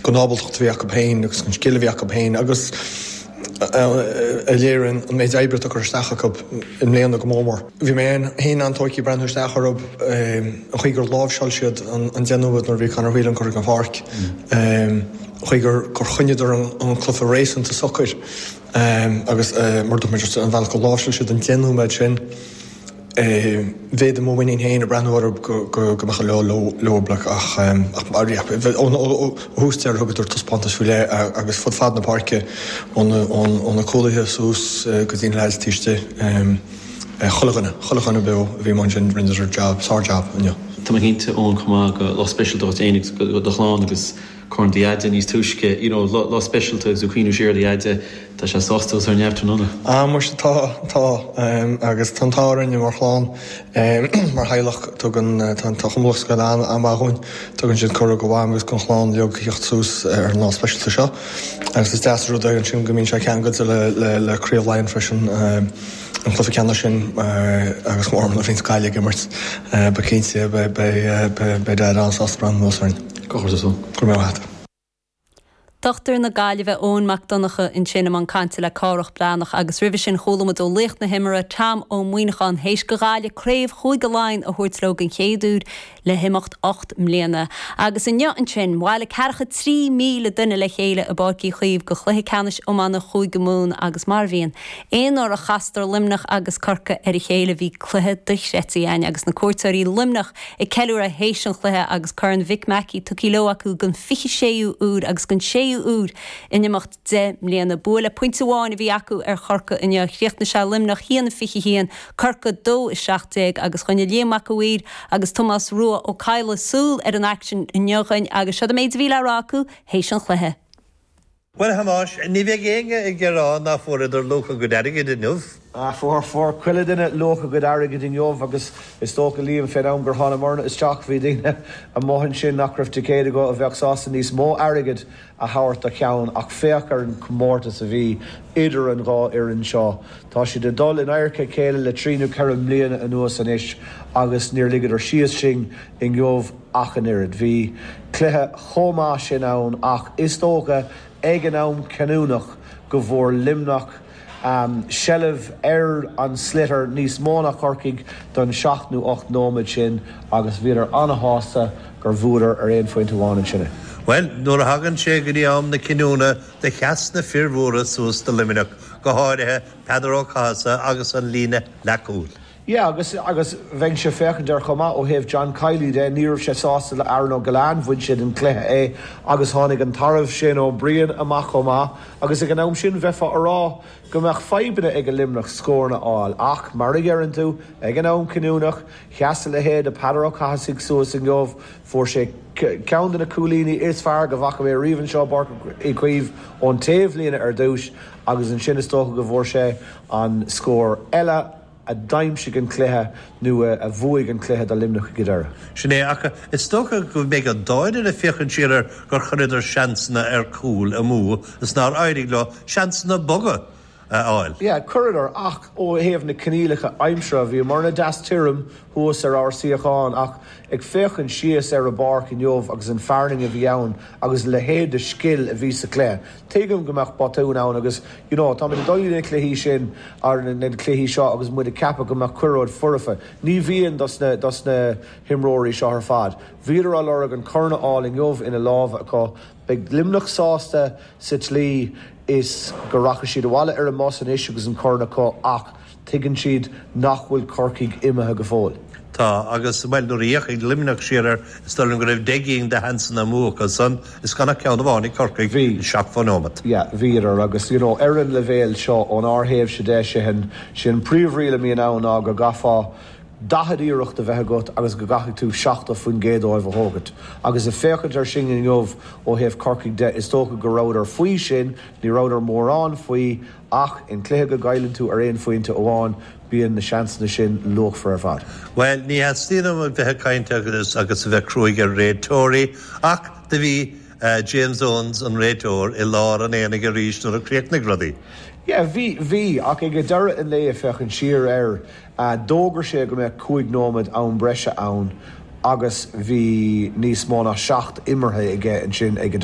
gon ábaltacht a bhí acu féin agus gon scil a bhí acu féin agus a léiríonn an méid oibre atá curtha isteach acu i mbliana go mór mór. Bhí mé féin an-tóigthe breathnú isteach orthu an chaoi gur láimhseáil siad an deich nóiméad nuair a bhí Conor Whelan curtha gon pháirc, chaoi gur choinneadar an cluiche réasúnta socair agus mar a dúirt mé an bealach gur láimhseáil siad an deich nóiméad sin. bhféadaim mo mhuinín féin a bhreathnú orthu go mbeadh an lá leob ach ó thús deireadh thugadar taispeántas faoi leith agus fud fad na páirce ó na cúlaithe suas go dtí na leaids taobh istigh. Chuile dhuine, chuile dhuine beo a bhí amuigh ansin rinneadar jab, sár-jab inniu. Tá mé cinnte, a Eoin, chomh maith gur lá speisialta dhuit fhéin agus do do chlann agus. Corn do Dheaide níos túisce inniu lá speisialta agus ag cuimhniú siar ar do Dheaide tá sé sásta agus é ar neamh tráthnóna. Ah muise tá, tá agus tá an t-ádh orainne mar chlann, mar theaghlach tugann, tá an Cumann Lúthchleas Gael an-mhaith dhúinn, tugann siad cuireadh go Mham agus gon chlann a bheith ag teacht suas ar an lá speisialta seo agus is deas an rud é ansin go mbíonn sé ceangailte le, le, le Craobh Laighean freisin, an cluiche ceannais sin agus ár mbunadh féin as Gaillimh ag imirt, beidh cinnte, beidh, beidh, beidh Daid an-sásta breathnú anuas orainn. Dochtúir na Gaillimhe Eoin Mac Donnacha ansin i mbun cainte le Cárthach Breathnach agus roimhe sin chuala muid ó laoch na himeartha Tom Ó Muíneacháin théis go Ghaillimh craobh Chúige Laighean a thabhairt leo den chéad uair le himeacht ocht mbliana. Agus inniu ansin bhailigh 43,000 duine le chéile i bPáirc Uí Chaoimh go Chluiche Ceannais Iomána Chúige Mumhan agus mar a bhíonn aon uair a chastar Luimneach agus Corcaigh ar a chéile bhí cluiche dochreidte ann agus na cuairteoirí Luimneach ag ceiliúradh théis an chluiche agus Corn Mhick Mackey tugtha leo acu den 26ú uair agus den 6ú uair in imeacht deich mbliana. Bua le pointe amháin a bhí acu ar Chorcaigh inniu. Chríochnaigh sé Luimneach 1-21, Corcaigh 2-17 agus choinnigh Liam Mac a' Mhaoir agus Tomás Rua Ó Cadhla súil ar an aicsean inniu dhúinn agus seod é an méid a bhí le rá acu théis an chluiche. Bhuel, a Thomáis, ní bheidh éinne ag rá ná fuaireadar luach a gcuid airgid inniu. Fuair, fuair chuile dhuine luach a gcuid airgid inniu agus is dócha, Liam, fén am gur thánamairne isteach bhí daoine amuigh ansin nach raibh ticéid acu a bheadh sásta níos mó airgid a thabhairt do cheann ach féach ar an gcomórtas a bhí idir an dhá fhoireann seo. Tá siad ag dul in adharca a chéile le trí nó ceithre mbliana anuas anois agus níor ligeadar síos sinn inniu. ach an oiread. Bhí cluiche chomh maith sin ann ach is dócha ag an am cinniúnach go bhfuair Luimneach seilbh ar an sliotar níos mó ná Corcaigh don seacht nó ocht nóiméad sin agus bhíodar ana-shásta gur bhuadar ar aon phointe amháin ansin. Bhuel, nuair a thagann sé go dtí am na cinniúna do sheas na fir mhóra suas do Luimneach, go háirithe Peadar Ó Cathasaigh agus an líne leathchúil. Yeah, agus, agus bheinnse ag féachaint ar chomh maith ó thaobh John Kiely de, ní raibh sé sásta le Aaron Ó Giolláin, bhain sé den chluiche é agus tháinig an tarbh Shane Ó Briain amach chomh maith agus ag an am sin bheifeá a rá go mbeadh fadhbanna aige Luimneach scóranna a fháil ach, mar a dheireann tú, ag an am cinniúnach, sheas a leithéid de Peadar Ó Cathasaigh suas inniu, fuair sé ceann de na cúilíní is fearr go bhfaca mé riamh anseo i bPáirc Uí Chaoimh ón taobhlíne ar dtús agus ansin is dócha go bhfuair sé an scór eile, a d'aimsigh an cluiche nó a bhuaigh an cluiche do Luimneach ag an deireadh. Sin é, ach is dócha go mbeidh an dá fhoireann ag féachaint siar ar gur chuireadar seansanna ar cúl amú is nár éirigh leo na seansanna boga a fháil. Yeah, chuireadar ach ó thaobh na coinníollacha aimsire, bhíomarna deas tirim thuas ar ár suíochán ach ag féachaint síos ar an bpáirc inniu agus an fearthainn a bhí ann agus a leithéid de scil a bhí sa chluiche. Tuigim go mbeadh botúin ann agus you know táimid ag dul chuig na cluichí sin or na cluichí seo agus muid ag ceapadh go mbeadh chuile rud foirfe. Ní bhíonn dos na himreoirí seo ar fad. Bhíodar á lorg an corn a fháil inniu ina lámha acu. Beidh Luimneach sásta sa tslí is go rachaidh siad abhaile ar an mbus anois agus an corn acu ach, Tuigeann siad nach bhfuil Corcaigh imithe go fóill. Tá, agus, bhuel, nuair a d'fhéachfaidh Luimneach siar ar, is dóigh liom go raibh deich gcinn de sheansanna amú acu san, is gan ach ceann amháin ag Corcaigh, Bhí. an seachtmhadh nóimeat. Yeah, bhíodar agus, you know, ar an leibhéal seo, ón ár thaobhse de, sé an, sé an príomhriail a mbíonn ann ná go gcaithfeá daichead iarracht a bheith agat agus go gcaithfidh tú seachtó faoin gcéad díobh a thógaint. Agus ag féachaint air sin inniu ó thaobh Corcaigh de, is dócha go rabhadar faoi sin, ní rabhadar mórán faoi, Ach in cluiche go gcailleann tú ar aon phointe amháin bíonn na seansanna sin luachmhar ar fad. Bhuel, ní thaitníonn liom bheith ag caint agus a bheith cruaigh ar réiteoirí ach do bhí James Owens, an réiteoir, i lár an aonaigh arís nuair a chríochnaigh rudaí. Yeah, bhí, bhí. Ach ag deireadh an lae, ag féachaint siar air, d'fhógair sé go mbeadh cúig nóiméad am breise ann agus bhí níos mó ná seacht imeartha aige ansin ag an deireadh.